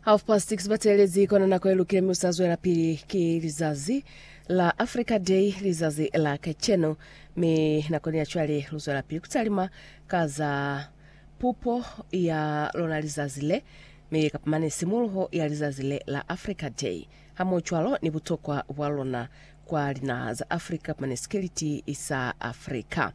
Half past 6 batelezi kona nako e lukile mi usa zwela pili ki lizazi la Africa Day lizazi la kacheno mi nako ni ya chwale lu zwela pili kutalima ka za pupo ya lona lizazi le mi kapamane simuluho ya lizazi le la Africa Day hamo chwalo ni butokwa bwa lona kwa linaha za Africa kapamane sikiliti sa Africa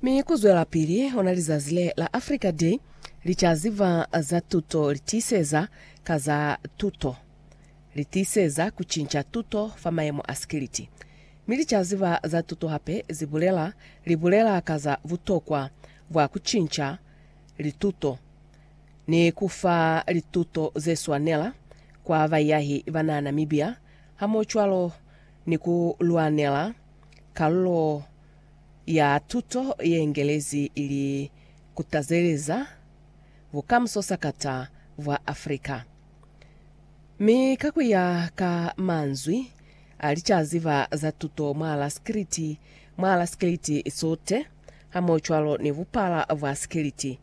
Mi kuzwelapili ona lizazi le la Africa Day, licaziba za tuto litiiseza ka za tuto. Litiiseza kucinca tuto fa mayemo a sikiliti. Mi licaziba za tuto hape zibulela libulela ka za butokwa bwa kucinca lituto ni kufa lituto zeswanela kwa baiyahi banaa Namibia, hamohocwalo ni ku lwanela kalulo ya tuto ye ngelezi ili kutazeleza bukamuso sakata bwa Africa. Mi ka ku ya ka manzwi a licaziba za tuto mwala sikiliti mwala sikiliti sote hamohocwalo ni bupala bwa sikiliti,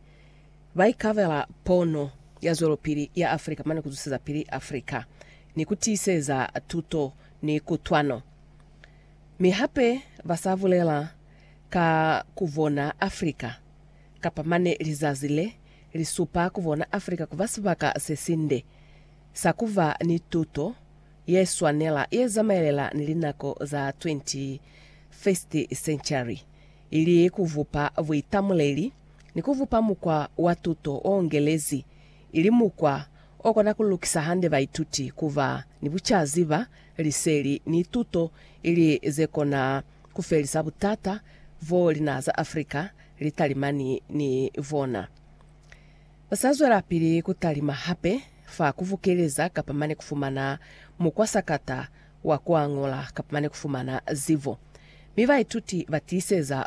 ba ikabela pono ya zwelopili ya Africa mane ku zuseza pili Africa ni ku tiiseza tuto ni kutwano. Mi hape ba sa bulela ka ku bona Afrika, kapa mane lizazi le li supa ku bona Afrika ku ba sibaka se sinde sa ku ba ni tuto ye swanela ye zamaelela ni linako za 21st century, ili ku bupa buitamuleli ni ku bupa mukwa wa tuto o ngelezi, ili mukwa o kona ku lukisa hande baituti ku ba ni bucaziba liseli ni tuto ili ze kona ku felisa butata bo linaha za Afrika li talimani ni bona. Ba sa zwelapili ku talima hape fa ku bukeleza kapa mane ku fumana mukwa sakata wa ku añola kapa mane ku fumana zibo. Mi baituti ba tiiseza